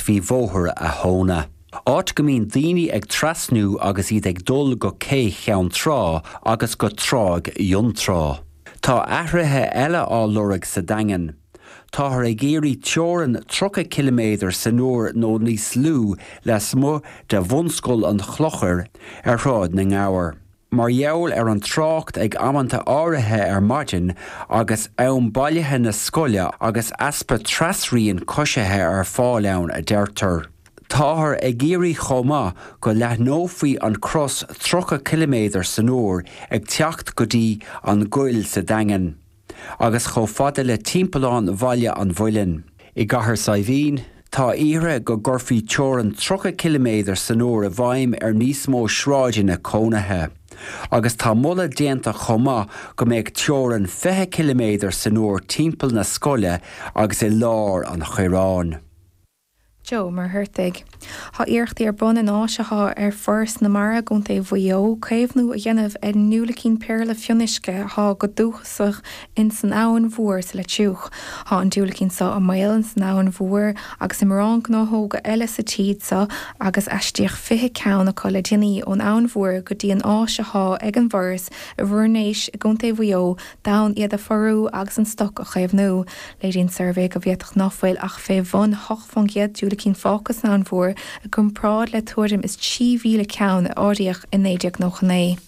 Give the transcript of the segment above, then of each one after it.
faoi bhóthar a' Thóna. Áit go mbíonn daoine ag trasnú agus iad ag dul go Cé Cheann Trá agus go Tráigh Fhionntrá. Tá athruithe eile á lorg sa Daingean. Táthar ag iarraidh teorainn 30 ciliméadar san uair nó níos lú lasmuigh de bhunscoil an Chlochair ar Shráid na nGabhar. Mar gheall ar an trácht ag amanta áirithe ar maidin agus am bailithe na scoile agus easpa trasrian coisithe ar fáil ann, a deirtear. Táthar ag iarraidh chomh maith go leathnófaí an crios 30 ciliméadar san uair ag teacht go dtí an gcoill sa Daingean. agus chomh fada le timpeallán Bhaile an Mhuilinn. I gCathair Saidhbhín, tá iarrtha go gcuirfí teorainn 30 ciliméadar san uair i bhfeidhm ar níos mó sráideanna cónaithe, agus tá moladh déanta chomh maith go mbeadh teorainn 20 ciliméadar san uair timpeall na scoile agus i lár an Choireáin. Joe Muircheartaigh. Thá iarrachtaí ar bun in áis athá ag Foras na Mara i gContae Mhaigh Eo caomhnú a dhéanamh ar an ndiúilicín péarla fionnuisce athá go dúchasach ins an Abhainn Mhór sa Leitriúch. Thá an diúilicín so i mbaol ins an Abhainn Mhór agus i mórán gnáthóga eile sa tír so agus aistríodh 20 ceann acu le déanaí ón Abhainn Mhór go dtí an áis athá ag an bhForas i bhFoirnéis i gContae Mhaigh Eo d'fhonn iad a phórú agus an stoc a chaomhnú. Léiríonn suirbhé go bhféadfadh ná fuil ach fé bhun 8 faoin gcéad diúilicín fágtha san Abhainn Mhór i gcompráid le tuairim is 3,000 ceann a áiríodh i 1999.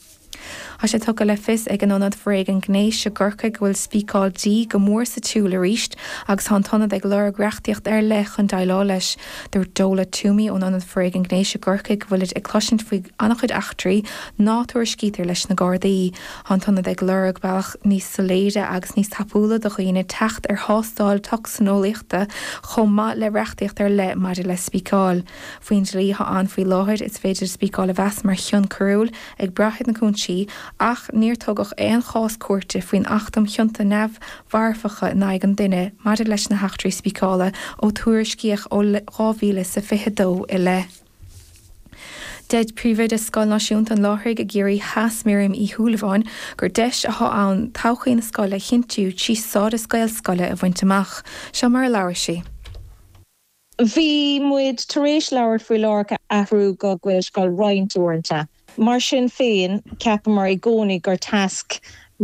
Tá sé tugtha le fios ag an Ionad Foréigean Gnéis i gCorcaigh go bhfuil spíceáil dí go mór sa tsiúl arís agus tá an tIonad ag lorg reachtaíocht ar leith chun déileáil leis. Dúirt Dola Twomey ón Ionad Foréigean Gnéis i gCorcaigh go bhfuilid ag cloisint faoi an-chuid eachtraí ná tuairiscítear leis na Gardaí. Tá an tIonad ag lorg bealach níos soiléire agus níos tapúla do dhaoine teacht ar thástáil tocsaineolaíochta chomh maith le reachtaíocht ar leith maidir le spíceáil. Faoin dlí atá ann faoi láthair, is féidir spíceáil a mheas mar chion coiriúil, ag brath ar na cúinsí, ach níor tugadh aon chás cúirte faoin Acht um Chionta Neamh-Mharfacha in aghaidh an Duine maidir leis na heachtraí spíceála a tuairiscíodh ó 2022 i leith. Deir Príomhoide Scoil Náisiúnta an Láithrigh i gCiarraí Theas Miriam Uí Shúilleabháin gur deis athá ann todhchaí na scoile a chinntiú trí stádas Gaelscoile a bhaint amach. Seo mar a labhair sí. Bhí muid tar éis labhairt faoi Láithreach a athrú go Gaelscoil roinnt uaireanta. Mar sin féin, cheapamar i gcónaí gur tasc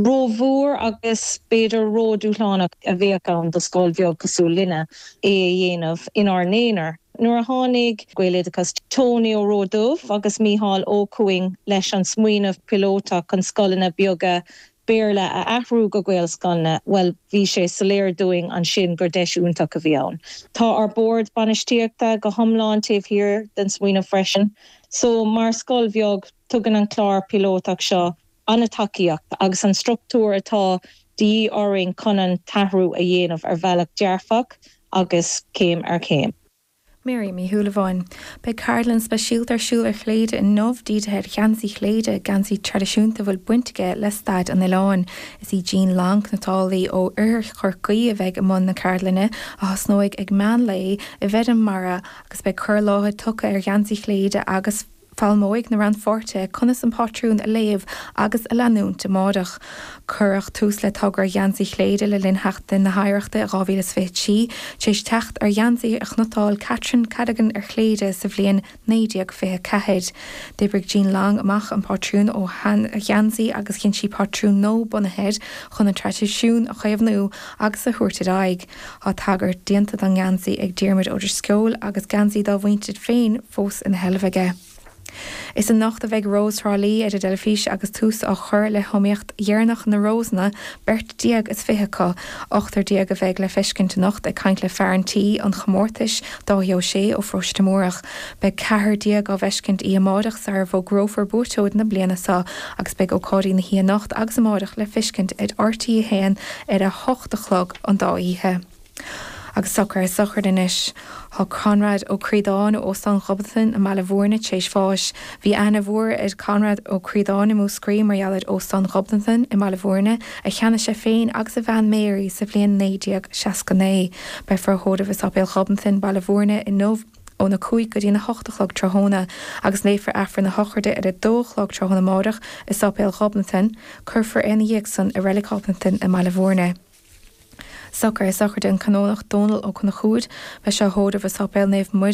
ró-mhór agus b'fhéidir ró-dúshlánach a bheadh ann do scoil bheag cosúil linne é a dhéanamh inár n-aonar. Nuair a tháinig Gaeloideachas Tonaí Ó Roduibh agus Mícheál Ó Cuinn leis an smaoineamh píolótach chun scoileanna beaga Béarla a athrú go Gaelscoileanna, bhuel bhí sé soiléir dúinn ansin gur deis iontach a bhí ann. Tá ár Bord Bainistíochta go hiomlán taobh thiar den smaoineamh freisin. So, mar scoil bheag, tugann an clár piolótach seo an-tacaíocht agus an structúr atá de dhíth orainn chun an t-athrú a dhéanamh ar bhealach dearfach agus céim ar chéim. Máire Ní Shúilleabháin. Beidh ceardlann speisialta ar siúl ar Chléire inniu dírithe ar gheansaí Chléire, geansaí traidisiúnta a bhfuil baint aige le stair an oileáin. Is í Jean Long, cniotálaí ó Oirthear Chorcaí, a bheidh i mbun na ceardlainne, a thosnóidh ag meán lae, i bhFeirm Mara, agus beidh cur i láthair tugtha ar gheansaí Chléire agus. Foghlaimeoidh na rannpháirtithe conas an pátrún a léamh agus a leanúint amárach. Cuireadh tús le togra Gheansaí Chléire le linn Sheachtain na hOidhreachta 2023 tar éis teacht ar gheansaí a chniotáil Catherine Cadogan ar Chléire sa bhliain 1924. D'oibrigh Jean Long amach an pátrún ón ngeansaí agus dhein sí pátrún nua bunaithe air chun an traidisiún a chaomhnú agus a thabhairt ar aghaidh. Tá tagairt déanta don ngeansaí ag Diarmuid Ó Drisceoil agus geansaí dá mhuintir féin fós ina sheilbh aige. Is anocht a bheidh Rós Thrá Lí ar an dteilifís agus tús á chur le hiomaíocht dheireanach na Rósanna, beirt déag is fiche acu. Ochtar déag a bheidh le feiscint anocht. Ag caint le fear an tí, an chomórtais, Dáithí Ó Sé ó Pharóiste Múrach, beidh ceathrar déag le feiscint oíche amáireach sarar bhfógrófar buaiteoir na bliana so agus beidh ócáidí na hoíche anocht agus amáireach le feiscint ar RTÉ 1 ar a hocht a chlog. an dá oíche. Agus socrú sochraide anois. Tá Conrad Ó Críodáin ó Óstán Ghobnatan i mBaile Mhúirne tar éis bháis. Bhí aithne mhór ar Chonrad Ó Críodáin i Múscraí mar gheall ar Óstán Ghobnatan i mBaile Mhúirne a cheannaigh sé féin agus a bhean Mary sa bhliain 1969. Beifear á thórramh i Sáipéal Ghobnatan, Baile Mhúirne, inniu. ón 5 go dtí an 8 a chlog tráthnóna agus léifear Aifreann na sochraide ar a dó a chlog tráthnóna amáireach i Sáipéal Ghobnatan. Cuirfear é ina dhiaidh san i Reilig Ghobnatan i mBaile Mhúirne. Socrú sochraide an Canónach Dónal Ó Conchúir beidh sé á thórramh i Sáipéal Naomh Muire